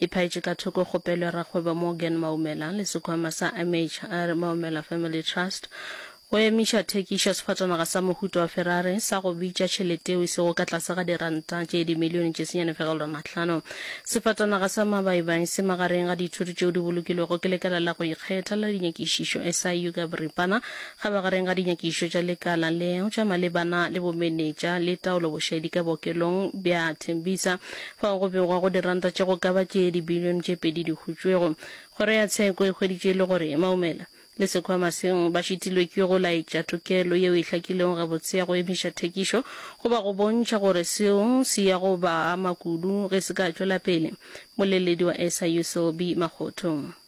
E phaetše ka thoko kgopelo ya rakgwebo Morgan Maumela le sekhwama sa MHR Maumela Family Trust go emiša thekišo ya sefatanaga sa mohuta wa Ferrari sa go bitša tšhelete yeo e sego ka tlase ga diranta tše dimilione tše senyane fegelelo a mahlano. Sefatanaga sa Mabaibai se magareng ga dithoto tšeo di bolokilwego ke lekala la go ikgetha la dinyakišišo, SIU ka boripana, ga magareng ga dinyakišišo tša lekala leo tša malebana le bomenetša le taolobošaedi ka bookelong bja Tembisa Fao go begwa go diranta tše go ka ba tše dibilione tše pedi di hutšwego. Kgoro ya Tsheko e hweditše e le gore Maumela le sekhwama se ba šitilwe ke go laetša tokelo yeo e hlakilego gabotse ya go emiša thekišo goba go bontšha gore seo se ya go ba ama kudu ge se ka tšwela pele. Moleledi wa SIU Selby Makgotho.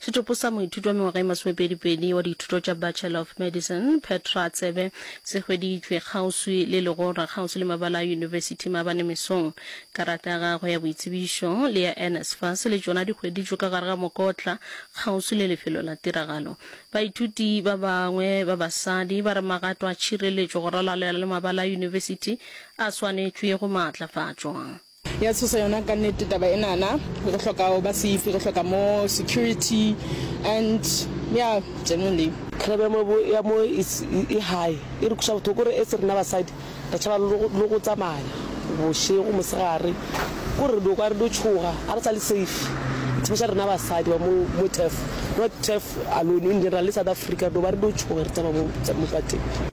Setopo sa moithuti wa mengwaga e masomepedipedi wa dithuto tša Bachelor of Medicine, Petra Tsebe, se hweditšwe kgauswi le legora kgauswi le mabala a yunibesithi maabane mesong. Karata ya gagwe ya boitsebišo le ya NSFAS le tšona di hweditšwe ka gare ga mokotla kgauswi le lefelo la tiragalo. Baithuti ba bangwe ba basadi ba re magato a tšhireletšo go ralala le mabala a yunibesithi a swanetšwe go maatlafatšwa. Ya tshosa yona ka nnete taba enana. Re hloka ho ba safe, re hloka more security and ya generally. Crime ya mo ya mo e high e re kuša bothoko gore as rena basadi re tšhaba le go tsamaya bošego mosegare kore re dio kwa re dio tšhoga ga re sa le safe especially rena basadi ba mo mo turf not turf alone in general le South Africa re dio ba re dio tšhoga re tsamaya mo mo pateng.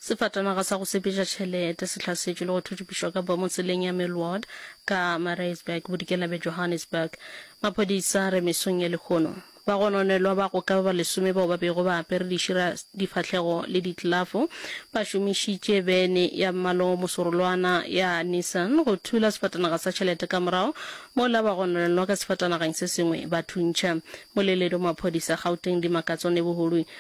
Sefatanaga sa go sepeša tšhelete se hlasetšwe le go thuthupišwa ka bomo tseleng ya Millward ka Mareisburg bodikela bja Johannesburg. Maphodisa re mesong ye lehono. Bagononelwa ba go ka ba ba lesome bao ba bego ba apere dišira, difahlego le ditlelafo ba šomišitše bene ya mmala o mosorolwana ya Nissan go thula sefatanaga sa tšhelete ka morago mola ba gononelwa ka sefatanageng se sengwe ba thuntšha. Moleledi wa maphodisa Gauteng Dimakatso Neboholwi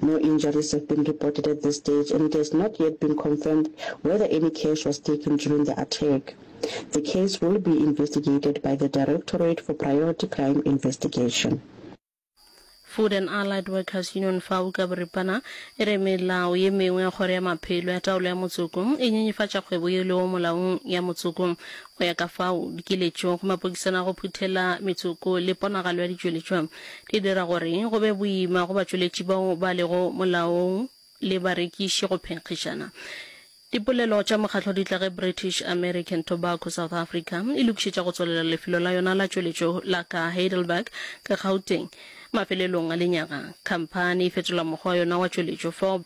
No injuries have been reported at this stage and it has not yet been confirmed whether any cash was taken during the attack. The case will be investigated by the Directorate for Priority Crime Investigation. Food and Allied Workers Union, fao ka boripana, e re melao ye mengwe ya Kgoro ya Maphelo ya Taolo ya Motsoko e nyenyefatša kgwebo ye lego molaong ya motsoko. Go ya ka fao, dikiletšo go mapokisana a go phuthela metsoko le ponagalo ya ditšweletšwa di dira gore go be boima go batšweletši bao ba lego molaong le barekiši go phenkgišana. Dipolelo tša mokgatlo di tla ge British American Tobacco South Africa e lokišetša go tswalela lefelo la yona la tšweletšo la ka Heidelberg, ka Gauteng. Mafelelong a lenyaga, khamphani e fetola mokgwa wa yona wa tšweletšo, fob.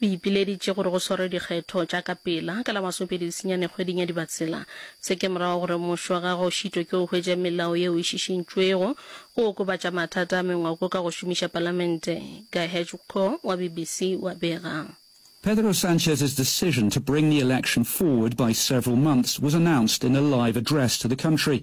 O ipileditše gore go swarwe dikgetho tša ka pela ka la masopedi lesenyane kgweding ya Dibatsela. Se ke morago gore mmušo wa gagwe o šitwe ke go hwetša melao yeo e šišintšwego go okobatša mathata a mengwako ka go šomiša palamente, Guy Hejmko wa BBC o a bega. Pedro Sanchez's decision to bring the election forward by several months was announced in a live address to the country.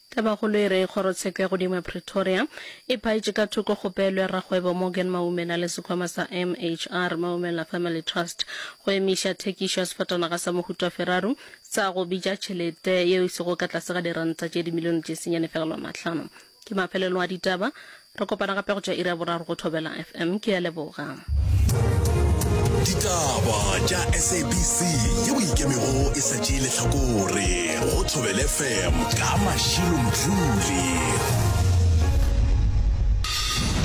Tabakgolo e re kgorotsheko ya godimo ya Pretoria e phaetše ka thoko kgopelo ya rakgwebo Morgan Maumela le sekhwama sa MHR, Maumela Family Trust, go emiša thekišo ya sefatanaga sa mohuta Ferrari sa go bitša tšhelete yeo e sego ka tlase ga diranta tše dimilione tše senyane fegelwa mahlano. Ke mafelelo a ditaba Re kopana gape go tšwa iri ya boraro go Thobela FM. Ke a leboga. Ditaba tša SABC ye o ikemego e sa tšee lehlakore go Thobel FM ka Mashilo Mdluli.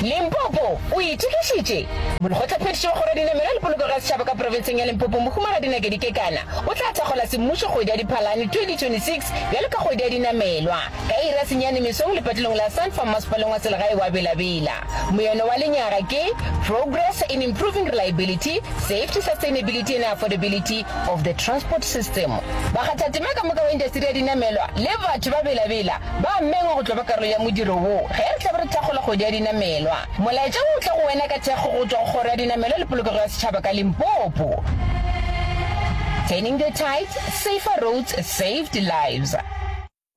Limpopo o itokišitše? Molekgotlaphethiši wa Kgoro ya Dinamelwa le Polokego ya Setšhaba ka Profenseng ya Limpopo Mohumagadi Nakedi Kekana o tla thakgola semmušo kgwedi ya Diphalane 2026 bjalo ka kgwedi ya dinamelwa. Ka iri ya senyane mesong lepatilong la Sun Farm Masepaleng wa Selegae wa Bela Bela, moyeno wa lenyaga ke Progress in Improving Reliability, Safety, Sustainability and Affordability of the Transport System. Bakgathatema ka moka wa indasteri ya dinamelwa le batho ba Bela Bela ba mengwa go tlo ba karolo ya modiro wo ge re tlabe re thakgola kgwedi ya dinamelwa. Molaetša wo o tla go wena ka thekgo go tšwa go Kgoro ya Dinamelwa le Polokego ya Setšhaba ka Limpopo. Turning the Tides, Safer Roads, Saved Lives.